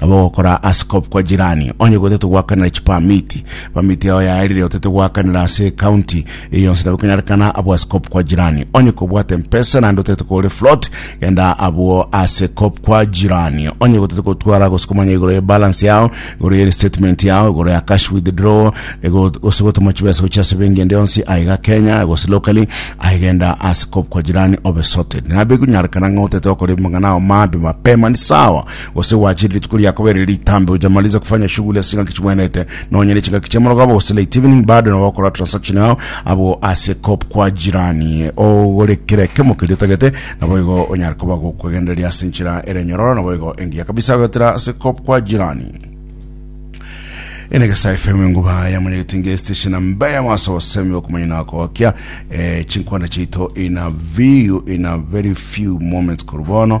Nabo ogokora ase kop kwa jirani, onye gotete goakanera chipamiti, pamiti yao yaerire otete goakanera ase ekaunti eye yonsi nabo ekonyarekana abwo ase kop kwa jirani. Onye kobwate empesa naende otete kore float, genda abwo ase kop kwa jirani. Onye gotete gotwara gose komanya igoro ye balance yao, igoro ye restatement yao, igoro ya cash withdrawal, ego- gose gotoma chibesa gochia ase benki ende yonsi aiga Kenya gose locally, aye genda ase kop kwa jirani obe sorted. Nabo ekonyarekana ng'a otete gokora amang'ana ao mabe mapema, ni sawa. Gose gwachire rituko ria kabere ritambe hujamaliza kufanya shughuli ase chingaki chibwenete nonya ne chingaki chia morogaba gose late evening bado nabo okora transaction yao abwo ase cop kwa jirani ogore kera ekemo keria otagete nabo igo onyare koba gokwegendereria ase enchera ere nyororo nabo igo engiya kabisa gotera ase cop kwa jirani ene gesa fm enguba yamanyegete nge station amba yamaso osemi okumanya na kokia eh, chinkwana chaito in a view in a very few moments koru bono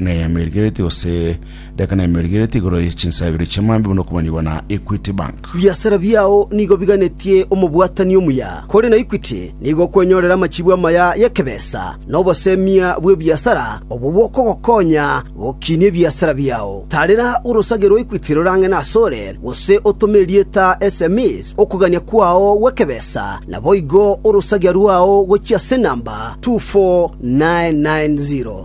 na ya emeeri igereti gose daka na emeeri igereti igoro ye chinsa ibere chia maambia buna okomanigwa na Equity Bank. Biasara biao nigo biganetie omobwatani omuya, kore na Equity nigo okwenyorera amachibu amaya y'ekebesa na obosemia bw'ebiasara obwo bokogokonya gokinia ebiasara biao. Tarera orosage rwa Equity rorang'ene asore, gose otome erieta sms okogania kwao gw'ekebesa, naboigo orosagia rwao gochia ase enamba 24990.